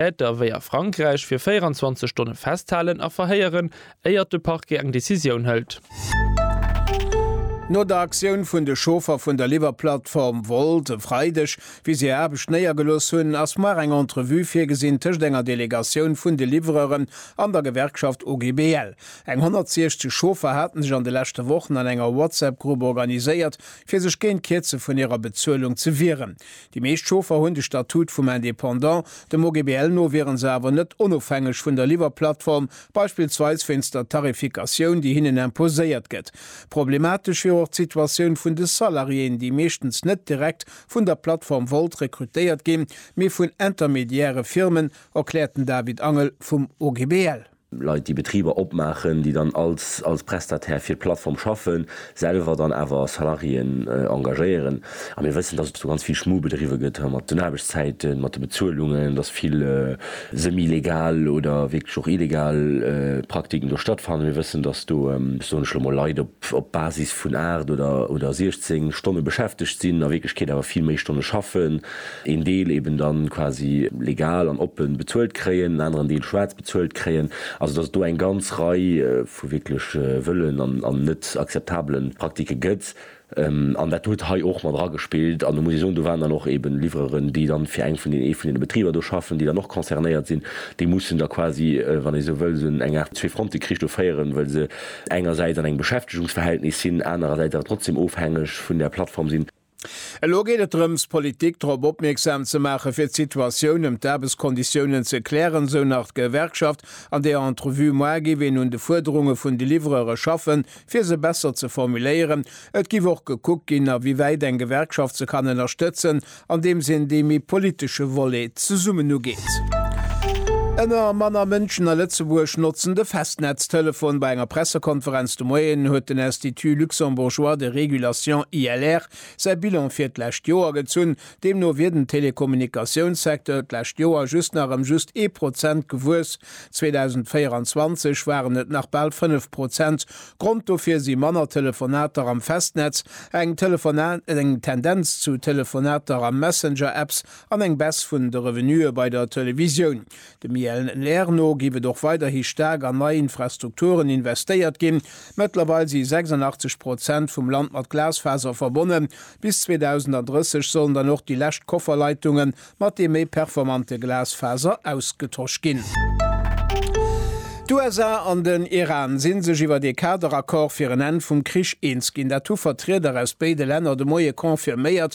Täter wéi a Frankräich fir 24 Stonne festhalen a verhéieren, éiert de Parquet eng Decisioun hëlt. No der Aktioun vun de Chauffer vun der Liwwerplattform Wolt e Freideg, wéi si hir Aarbecht néiergelooss hunn, ass muer eng Entrevue virgesinn tëscht enger Delegatioun vun de Livreuren an der Gewerkschaft OGBL. Eng 160 Chauffer hate sech an de leschte Wochen an enger WhatsApp-Grupp organiséiert, fir sech géint d'Kierze vun hirer Bezuelung ze wieren. Déi meescht Chauffer hunn de Statut vum Indépendant, dem OGBL no wieren se awer net onofhängeg vun der Liwwerplattform, beispillsweis wéinst der Tarifikatioun, déi hinnen imposéiert gëtt. Problematesch wier och d'Situatioun vun de Salariéen, déi meeschtens net direkt vun der Plattform Wolt rekrutéiert ginn, mee vun intermediäre Firmen, erkläert den David Angel vum OGBL. Leit, déi Betriber opmaachen, déi dann als als Prestataire fir d'Plattform schaffen, selwer dann awer Salariéen engagéieren. A mir wëssen, dass et do ganz vill Schmu bedriwwe gëtt mat den Aarbechtszäiten, mat de Bezuelungen, dass vill semi-legal oder wierklech och illegal Praktiken do stattfannen. Mir wëssen, dass do, soen ech elo mol, Leit op op Basis vun 8 oder oder 16 Stonne beschäftegt sinn, a Wierklechkeet awer vill méi Stonne schaffen, een Deel eben dann quasi legal an oppe bezuelt kréien, en aneren Deel schwaarz. bezuelt kréien, also dass et do eng ganz Rei vu wierklech wëllen an net akzeptabele Praktike gëtt. An dat huet hei och mat eragespillt. An do muss ee soen, do waren dann och eeben Livreuren, déi dann fir eng vun deenen, ee vun deene Betriber do schaffen, déi dann och concernéiert sinn, déi mussen da quasi, wann ee esou wëll, esou eng Aart Zwee-Fronte-Krich do féieren, well se engersäits an engem Beschäftigungsverhältnis sinn, anerersäits awer trotzdem ofhängeg vun där Plattform sinn. Elo geet et drëms, d'Politik drop opmierksam ze maachen, fir d'Situatioun ëm d'Aarbechtskonditiounen ze klären, esou nach d'Gewerkschaft an där Entrevue. Moar géif een un de Fuerderunge vun de Livrere schaffen, fir se besser ze formuléieren. Et géif och gekuckt ginn, a wéi wäit eng Gewerkschaft se kann ënnerstëtzen, andeems een dee méi politesche Volet zesummen ugeet. Ëmmer manner Mënschen a Lëtzebuerg notzen de Festnetztelefon. Bei enger Pressekonferenz De Moien huet den Institut luxembourgeois de régulation, ILR, säi Bilan fir d'lescht Joer gezunn. Deemno wier den Telekommunikatiounssecteur d'lescht Joer just nach ëm just ee Prozent gewuess. 2024 waren et nach bal fënnef Prozent. Grond dofir si manner Telefonater am Festnetz, eng eng Tendenz zu Telefonater a Messenger-Apps an eng Baisse vun de Revenuë bei der Televisioun. Dem Yael Nair no giff et och weiderhi staark an nei Infrastrukturen investéiert ginn. Mëttlerweil si 86 Prozent vum Land mat Glasfaser verbonnen. Bis 2030 sollen dann och déi lescht Kofferleitunge mat deem méi performante Glasfaser ausgetosch ginn. D'USA an den Iran si sech iwwer ee Kaderaccord fir en Enn vum Krich eens ginn. Dat hu Vertrieder aus béide Länner de Moie confirméiert.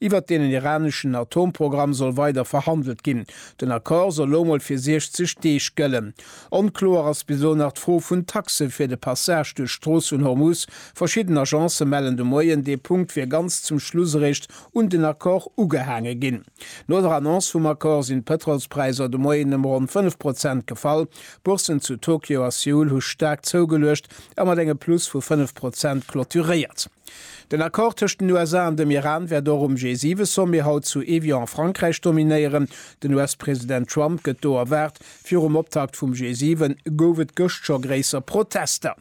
Iwwert den iraneschen Atomprogramm soll weider verhandelt ginn. Den Accord soll elo mol fir 60 Deeg gëllen. Onkloer ass bis elo nach d'Fro vun Taxe fir de Passage duerch d'Strooss vun Hormuz. Verschidden Agencë mellen de Moien, dee Punkt wier ganz zum Schluss eréischt un den Accord ugehaange ginn. No der Annonce vum Accord sinn d'Pëtrolspräisser de Moien ëm ronn 5 Prozent gefall. D'Bourssen zu Tokio a Seoul hu staark zougeluecht a mat engem Plus vu 5 Prozent clôturéiert. Den Accord tëscht den USA an dem Iran wäert och um G7-Sommet haut zu Evian a Frankräich dominéieren. Den US-President Trump gëtt do erwaart. Virum Optakt vum G7 gouf et gëscht scho gréisser Protester.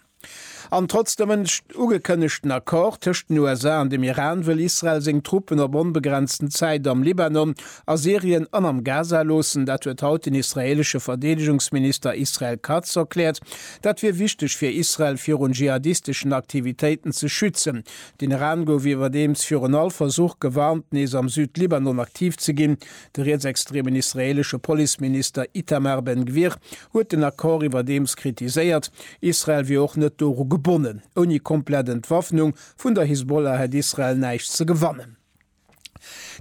An trotz dem ënnescht ugekënnegten Accord tëscht den USA an dem Iran, wëll Israel seng Truppen op onbegrenzten Zäit am Libanon A Syrien an am Gaza loossen, dat huet haut den israeelesche Verdeedegungsminister Israel Katz erkläert. Dat wier wichteg fir Israel virun dschihadisteschen Aktivitéiten ze schützen. Den Iran gouf iwwerdeems virun all Versuch gewarnt, nees am Süd-Libanon aktiv ze ginn. De rietsextremen israeelesche Policeminister Itamar Ben Gvir huet den Accord iwwerdeems kritiséiert. Israel wier och net doru gebonnen. Ouni komplett Entwaffnung vun der Hisbollah hätt Israel näischt ze gewannen.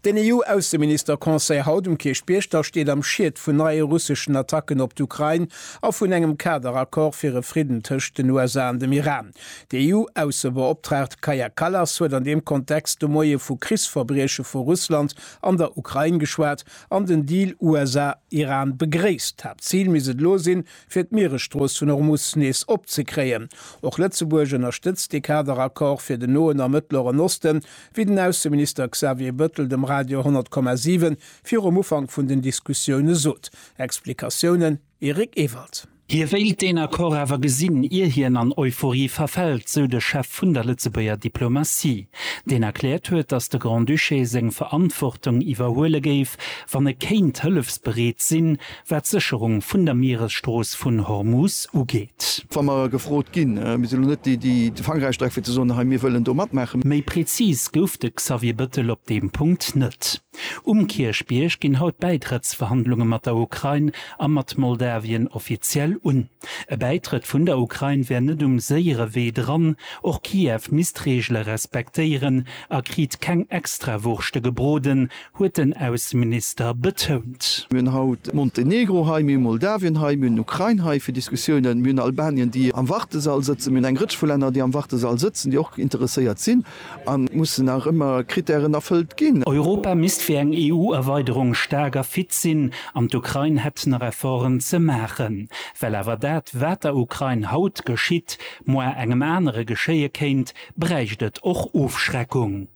Den EU-Ausseminister-Conseil haut um Kierchbierg da steet am Schiet vun neie russeschen Attacken op d'Ukrain a vun engem Kader-Accord fir e Fridden tëscht den USA an dem Iran. D'EU-Aussebeoptraagt Kaja Kallas huet an deem Kontext de Moie vu Krichsverbrieche vu Russland an der Ukrain geschwat an den Deal USA-Iran begréisst. D'Haaptzil misst et elo sinn, fir d'Mieresstrooss vun Hormus nees opzekréien. Och Lëtzebuerg ënnerstëtzt dee Kader-Accord fir den Noen a Mëttleren Osten, Wéi den Ausseminister Xavier Bëttel dem Radio 100,7 virum Ufank vun den Diskussioune sot, Explikatiounen, Eric Ewald. Hie wéilt deen Accord awer gesinn, ier hien an Euphorie verfält, sou de Chef vun der Lëtzebuerger Diplomatie, deen erkläert huet, datt de Grand-Duché seng Verantwortung iwwerhuele géif, wann e kéint hëllefsbereet sinn, wat d'Sécherung vun der Mieresstrooss vun Hormus ugeet. Wa mer gefrot ginn, Mir sinn elo net déi, déi de Fang erausstrecken, fir ze soen, Hei, mir wëllen do matmaachen. Méi prezis gouf de Xavier Bettel op deem Punkt net. Um Kierchbierg ginn haut d'Bäitrëttsverhandlunge mat der Ukrain a mat Moldawien offiziell un. E Bäitrëtt vun der Ukrain wär net um séiere Wee dran. Och Kiew misst d'Reegele respektéieren a kriit keng Extrawurschte gebroden, huet den Ausseminister betount. Mir hunn haut Montenegro hei, mir hu Moldawien hei, mir hunn d'Ukrain hei fir Diskussiounen, mir hunn Albanien, déi am Wartesall sëtzen, mir hunn eng Rëtsch vu Länner, déi am Wartesall sëtzen, déi och interesséiert sinn. An et mussen nach ëmmer Krittären erfëllt ginn. Europa misst fir eng EU-Erweiderung staark a fit sinn an d'Ukrain hätt nach Efforten ze maachen. Well awer dat, wat der Ukrain haut geschitt, moar engem anere geschéie kéint, bräicht et och Ofschreckung.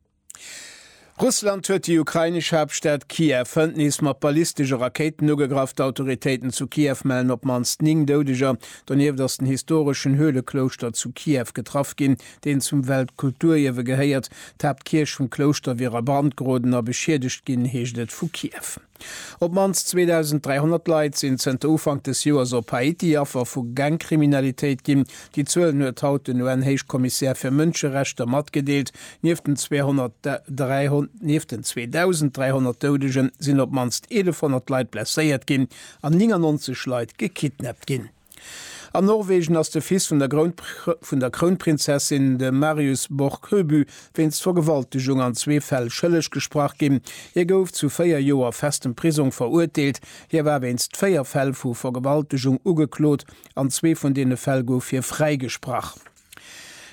Russland huet déi ukrainesch Haaptstad Kiew hënt nees mat ballistesche Rakéiten ugegraff. D'Autoritéiten zu Kiew mellen op d'mannst 9 Doudeger. Donieft ass den historeschen Höhleklouschter zu Kiew getraff ginn, deen zum Weltkulturierwe gehéiert. D'Haaptkierch vum Klouschter wier a Brand geroden a beschiedegt ginn, heescht et vu Kiew. Op d'mannst 2.300 Leit sinn zënter Ufank des Joers op Haiti Affer vu Gangkriminalitéit ginn. Déi Zuelen huet haut den UN-Héichkommissär fir Mënscherechter matgedeelt. Nieft den 2.300 Doudegen sinn op d'mannst 1.100 Leit blesséiert ginn an 99 Leit gekidnappt ginn. An Norwegen ass de Fils vun der vun der Krounprinzessin, de Marius Borg Høby, wéinst Vergewaltegung an zwee Fäll schëlleg gesprach ginn. Hie gouf zu véier Joer festem Prisong verurteelt. Hie war wéinst véier Fäll vu Vergewaltegung ugeklot, an zwee vun deene Fäll gouf hie fräigesprach.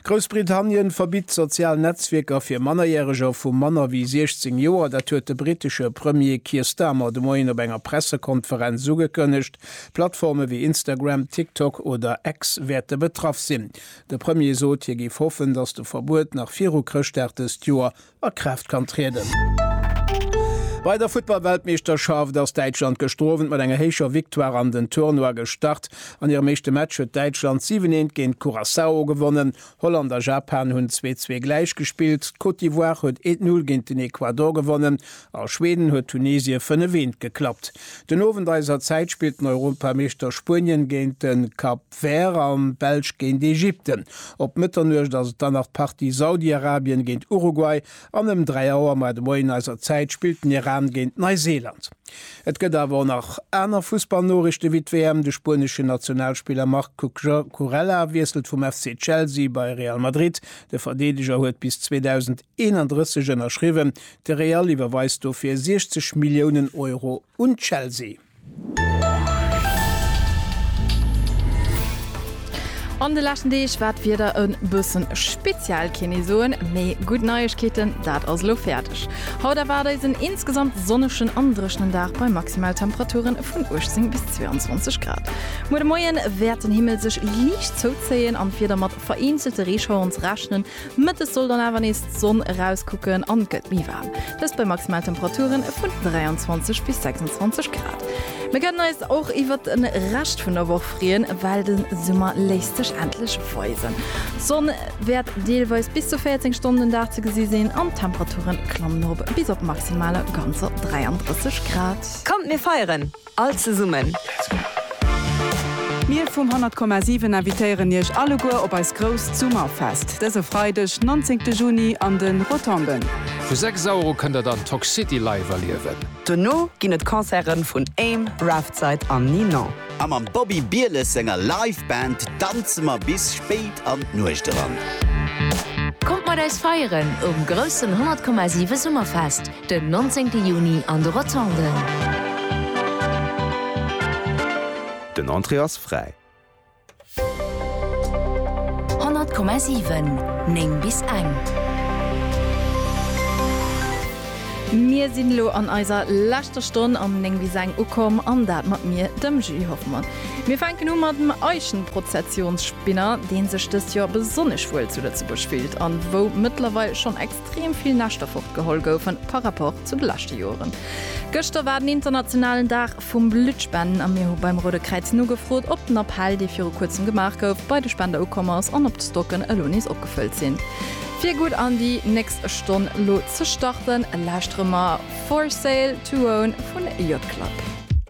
Groussbritannien verbitt sozial Netzwierker fir Mannerjäreger vu manner wéi 16 Joer. Dat huet de brittesche Premier Keir Starmer de Moien op enger Pressekonferenz ugekënnegt. Plattforme wéi Instagram, TikTok oder X wäerte betraff sinn. De Premier sot, hie géif hoffen, datt de Verbuet nach viru Chrëschtdag dëst Joer a Kraaft kann trieden. Bei der Futtballweltmeeschterschaft ass Däitschland gestrowent mat enger héicher Victoire an den Tournoi gestart. An hirem éischte Match huet Däitschland 7, 1 géint Curaçao gewonnen. Holland a Japan hunn 2, 2 gläich gespillt. D'Côte d'Ivoire huet 1, 0 géint den Ecuador gewonnen a Schweden huet Tunesie 5, 1 geklappt. Den Owend eiser Zäit spillt den Europameeschter Spuenien géint de Kap. D'Vert an d'Belsch géint Ägypten. Op Mëtternuecht ass et dann nach d'Partie Saudiarabien géint Uruguay an ëm 3 Auer, mar de Moien eiser Zäit, spillt den Iran géint Neiseeland. Et gëtt awer och nach aner Fussballnoriichten, wéi d'WM. De spueneschen Nationalspiller Marc Cucurella wiesselt vum FC Chelsea bei Real Madrid. De Verdeedeger huet bis 2031 ënnerschriwwen. De Real iwwerweist dofir 60 Milliounen Euro un Chelsea. An de leschten Deeg war d'Wieder e bëssen speziell, keen ee soen, mee gutt Neiegkeeten, dat ass elo fäerdeg. Haut erwaart eis en insgesamt sonnegen an dréchnen Dag bei Maximaltemperature vun 18 bis 22 Grad. Muer de Moien wäert den Himmel sech liicht zouzéien an d'Wieder mat vereenzelte Reeschaueren ze rechnen. Mëttes soll dann awer nees d'Sonn erauskucken an et gëtt méi waarm, dëst bei Maximaltemperature vun 23 bis 26 Grad. Mir kënnen eis och iwwert de Rescht vun der Woch freeën, well de Summer léisst sech endlech weisen. D'Sonn wäert deelweis bis zu 14 Stonnen den Dag ze gesi sinn an d'Temperature klammen erop bis op maximaler ganzer 33 Grad. Kommt mir feieren! All zesummen! Mir vum 100,7 invitéieren Iech alleguer op eist grousst Summerfest dëse Freideg, nonzéngte Juni an de Rotonden. Vu 6 Auer u kënnt der dann Toc City live erliewen. Dono ginn et Concerte vun Aim, Raftside an Ninon. A mam Bobby Bieles senger Live Band danze mer bis spéit an d'Nuecht eran. Kommt mat eis feieren um groussen 100,7 Summerfest! Den 19 Juni an de Rotonden. Den Entrée ass fräi. 100,7 9 bis eng. Mir sinn elo an eiser leschter Stonn am 9 bis eng ukomm an dat mat mir, dem Julie Hoffmann. Mir fänken u mat dem Eichenprozessionsspinner, deen sech dëst Joer besonnesch wuel zu Lëtzebuerg fillt an wou mëttlerweil schonn ex. extrem vill Näschter fortgeholl goufen par rapport zu de leschte Joeren. Gëschter war den internationalen Dag vum Blutspenden a mir hu beim Roude Kräiz nogefrot, ob den Appell, dee viru kuerzem gemaach gouf, bei de Spender ukomm ass an ob d'Stocken elo nees opgefëllt sinn. Fir gutt an déi nächst Stonn elo ze starten, lauschtere mer For Sale To Own vun Yacht Club.